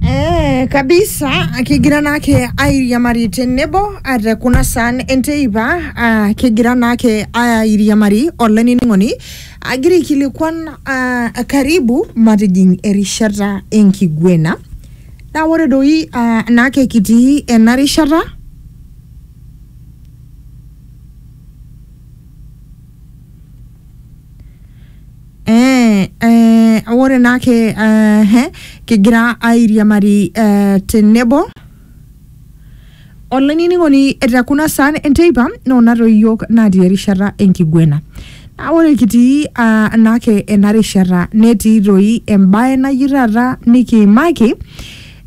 Eh, kabisa kigira naake airiamari tenebo ah, te kuna saan enteipa ah, kigira naake airiamari olainining'oni agira aikilikuan ah, karibu matijing erishata enkiguena naa ore doi ah, naake kitii ena rishata Eh, eh, ore naake eh, he, kigira airiamari eh, tenebo olainining'oni te kuna saan enteipa noonata iyiook natii erishata enkiguena naa ore kitii ah, naake ena rishata netii doi embae naji taata nikiimaki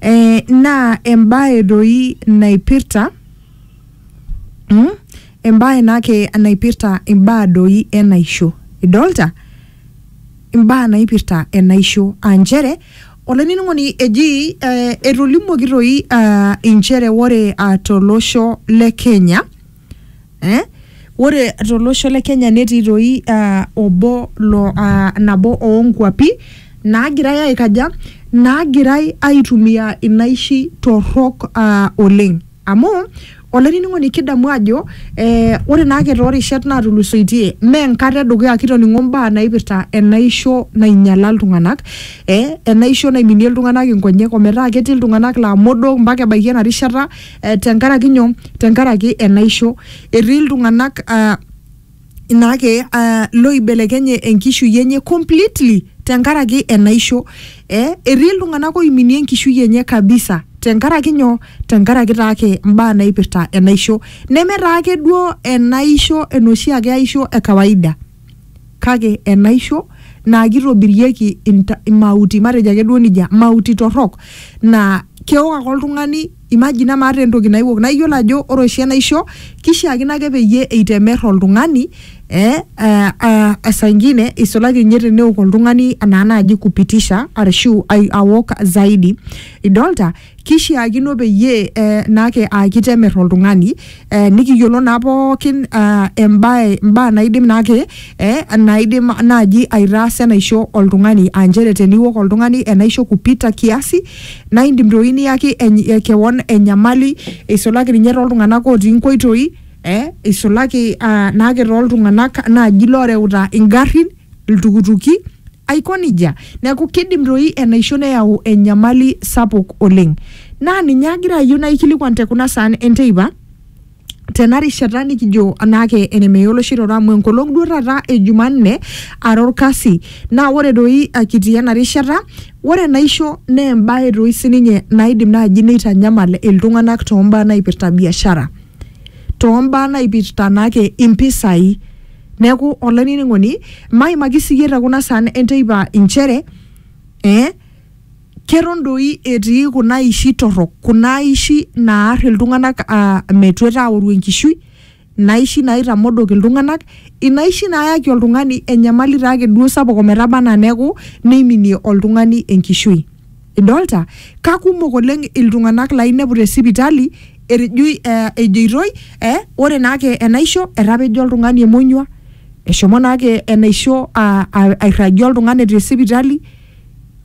eh, naa embae doi naipirta mm? embae naake naipirta imbaa doi enaisho idolta imbaa naipirta enaisho aa nchere olainining'oni eji eh, etolimuoki toi ah, inchere ore ah, tolosho le kenya eh? ore tolosho le kenya netii toi ah, obo lo ah, nabo oonkuapi naagirai aikaja naagirai aitumia inaishi torrok ah, oleng Amu, olainining'oni kidamu ajo eh, ore naake toorishat naatulusoitie mee enkata edukuya kitoning'o mbaa naipirta enaisho nainyala iltung'anak, eh, enaisho naiminie iltung'anak inkonyek ometaa ketii iltung'anak laa modook mpaka ebaiki ena rishata eh, tenkaraki nyoo? Tenkaraki enaisho. Etii iltung'anak ah, inake uh, loibelekenye enkishui enye completely tenkaraki enaisho eh, etii iltung'anak oiminie enkishui enye kabisa tenkaraki nyoo tenkaraki taake imbaa naipirta enaisho neme taake duo enaisho enoshi ake aisho e kawaida kake enaisho naa kitobirieki inta- imauti matejo ake duo nijia mauti torrok naa keok ake oltung'ani Imagina maata entoki naiwok. Naa iyiolo ajo ore oshi enaisho kishiakino ake peyie eitemer oltung'ani eh esaa ingine isulaki ninye teneok oltung'ani enaa naaji kupitisha arashu awok zaidi idolta kishiakino peyie eh naake aa kitemer oltung'ani eh, nikiyiolo naa pookin ah, embae mbaa naidim naake eh, naidim naaji aitaasa enaisho oltung'ani aa nchere teniwok oltung'ani enaisho kupita kiasi naa indim doi niyaki eny- eh, kewon enyamali eisulaki ninye toltung'anak otii inkoitoi eh, eisulaki ah, naake toltung'anak naaji loreuta ingarrin iltukutuki aiko nijia. Neeku kidim toi enaisho neyau enyamali sapuk oleng. Naa ninye agira ayieu naikilikuan te kuna saan enteipa tena rishata nikijo anaake enemeya oloshi roro amu enkolong duo taata e Jumanne ara orkasi. Naa ore doi kitii ena rishata, ore enaisho naa embae doi sininye naidim naaji neitanyamal iltung'anak too mbaa naipirta biashara, too mbaa naipirta naake impisai. Neaku olainining'oni, maimaki siyie te kuna saan e nteipa inchere ee keton doi etii kuna aishi torrok, kuna aishi naar iltung'anak aa metuata aoru enkishui, inaishi naitamodok iltung'anak, inaishi naayaki oltung'ani enyamali taake duo sapuk ometaba anaa neaku neiminie oltung'ani enkishui. Idolta? Kakumok oleng iltung'anak lainepu te sipitali etejoi eh, ejoitoi eh, ore naake enaisho etapejo oltung'ani emonyua, eshomo naake enaisho ah, ah, airragie oltung'ani te sipitali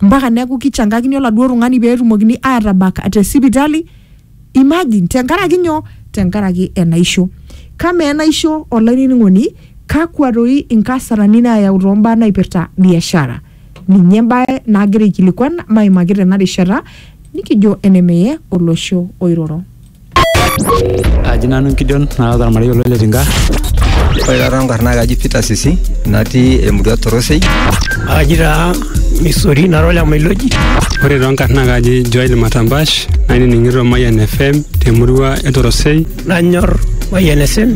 mpaka neeku kichangakini oladuo tung'ani peetumokini atabak te sipitali. Imagine, tenkaraki nyoo? Tenkaraki enaisho. Kamaa enaisho olainining'oni, kakwa toi inkasarani naayau too mbaa naipirta biashara? Ninye embae naagira aikilikuan maimaki tena rishata nikijo enemeye olosho oiroro. Aji nanu Gideon naata ormarei olo Letinka. Ore taa toonkarn naa kaji Peter Sisi natii emurua Torosei. Aji taa Misori nara ole Mailoji. Ore toonkarn naa kaji Joel Matambash nainining'ito Mayian FM temurua e Torosei. Nanyor Mayian FM.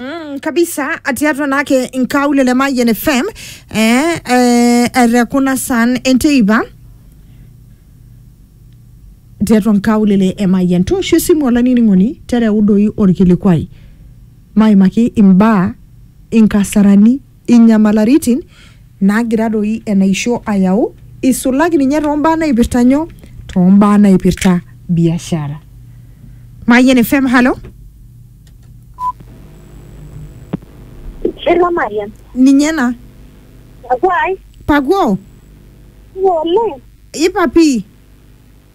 Mm, kabisa atiatua naake nkaule le Mayian FM eh, eh, etekuna san enteipa tiatua nkaulele e Mayian toosho esimu olainining'oni tereudoyu orkilikwai maimaki imbaa inkasarani inyamalaritin naagira doi enaisho ayau isulaki ninye toombaa naipirta nyoo toombaa naipirta biashara. Mayian FM, halo. Hello Mariam. Ninye ena. Pakuai. Pakuo. Ng'ole. Ipa pii.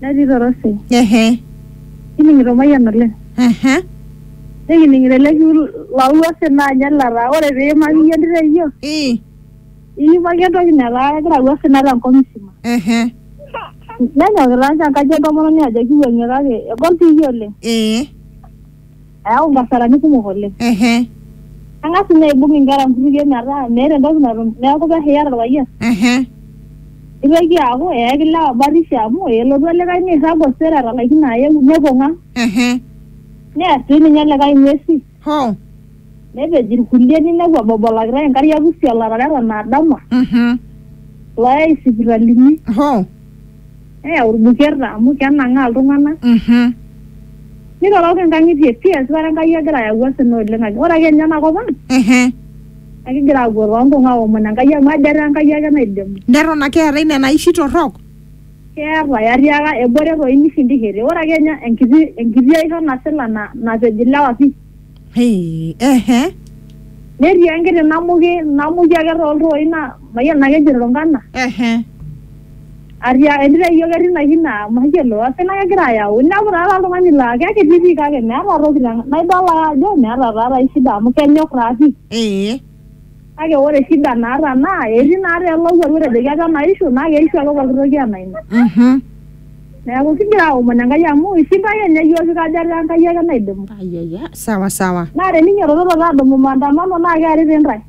natii torosai ehe kining'ito Mayian oleng ehe nikining'ito ele kiu lolwase naa ninye lataa ore piimaki iyie entito ai yiok ii iimaki entoki netaa kegira apuo osina tenkop musima ehe nenyokita ninche enkaji entomononi ajo kiwuang'ie kake egol piiyie oleng ee Ayau nkasarani kumok oleng. Ehe. Kang'as ninye aibung inkera nkutukie metaa meeta entoki natum neeku pehiar orpayian. Ehe. Nitoki aaku eyaki ilewa batisho amu elotu olikae nirrag osero etalaikine ayeu nepong ang. Ehe. Near si ninye likae ing'uesi. Hoo. Nepej irkulie ninepu ebobolakitae inkariak pusi olarara eton adama. Mhm. Loyai isipitalini. Hoo. neyau ilbuketa amu kenang'aa iltung'anak Mhm. niroroki inkang'itie pii esipata Enkai egira ayau osina oleng ake ore ake ninye ena kop ang Ehe. naa kigira aapuo toonkung aomon Enkai amu ajo etaa Enkai ake naidimu Neton ake eetae nena aishi torrok? keetae atiaka ebore toi nishindishete ore ake ninye enkiti enkiti aisho nasila na napej ilewa pii Hey, ehe. netii enkiti namuki namuki ake tooltoi na mayiolo ake ejo irungana Ehe. atia entito ai yiok etii ina kina mayiolo osina kegira ayau inepu taata oltung'ani laa kekiti pii kake meeta toki tena- naidol ake ajo meeta taata ai shida amu kenyok taa pii Ee. Kake ore shida naata naa etii naa te lowuaru etejoki apa enaishu naa keishu ake pooki toki anaa ina. Mhm. Neeku kigira aomon Enkai amu ishinda ake ninye iyiook kikaja ataa Enkai ake naidimu. Ayaya, sawa sawa. Naa teninyiotototo adumu maandamano naa kearita intae.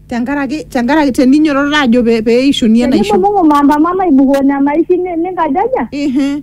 Tenkaraki tenkaraki teninyiotototo aajo pee eishuni enaisho. Tenibung'ubung'u maandamano aibukoo nena aishi ninkajaja? Ehe.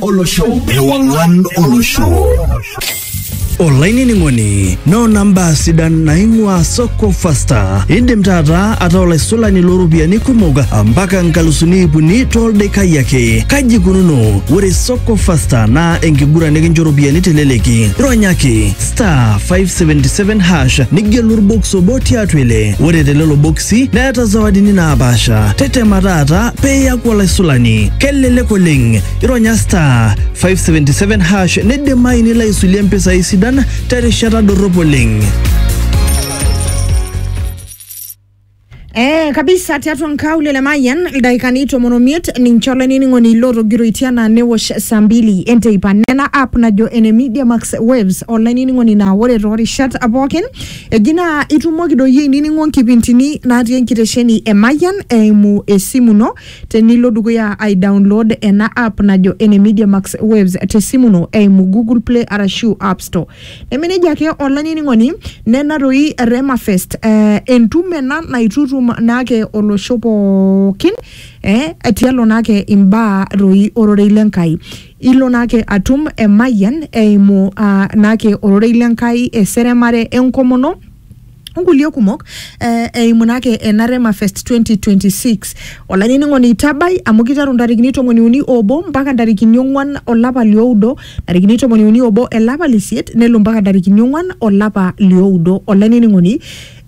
olosho ewang'an olosho olainining'oni noona mbaa sidan naing'ua soko fasta indim taata ataa olaisulani looropiyiani kumok mpaka nkalusuni iip uni toldaikai ake kaji ikununo ore soko fasta naa enkiguran nikincho ropiyiani teleleki ronyaki star 577 hash nigelu orbox obo tiatua ile ore telelo boksi neeta zawadini naapaasha tetema taata peeyaku olaisulani kelelek oleng ironya star 577 hash nidimayu nilo aisulie mpisai sidan terishata dorrop oleng. Eh, kabisa tiatua nkaulele le mayian ildaikani tomon omiet ninche olainining'oni lootogiroitia naa newosh saa mbili enteipa nena app najo ene media max waves olainining'oni naa ore toorishat pookin eji naa itumoki doi ainining'o nkipintini natii enkitesheni e mayian eimu esimu ino Tenilo dukuya ai download ena app najo ene Media Max Waves te simu ino eimu Google Play arashu App Store. Neme nejia ake olainining'oni, nena doi Rema Fest eh, entumo ena naitutum naake olosho pookin eh, tialo naake imbaa doi ororei le Nkai. Ilo naake atum emayian eimu ah, naake ororei le Nkai, eseremare, enkomono, onkulie kumok eh, eimu naa ake ena Rema Fest 2026 olainining'oni itabai amu kiteru ntarikini tomoni uni obo mpaka ntarikini ong'wan olapa lioudo ntarikini tomoni uni obo elapa lisiet nelo mpaka ntarikini ong'wan olapa lioudo olainining'oni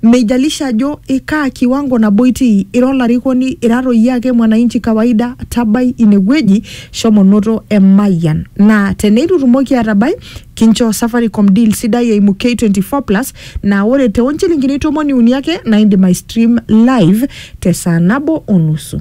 meijalisha ajo ikaa kiwango nabo itii ira olarikoni ira toi iyie ake mwananchi kawaida tabai inewueji shomo noto emayian naa teneitu itumoki atabai Kinchoo Safaricom deal sidai eimu K24 Plus naa ore too nchilingini tomoni uni ake naa indim aistream live te saa nabo o nusu.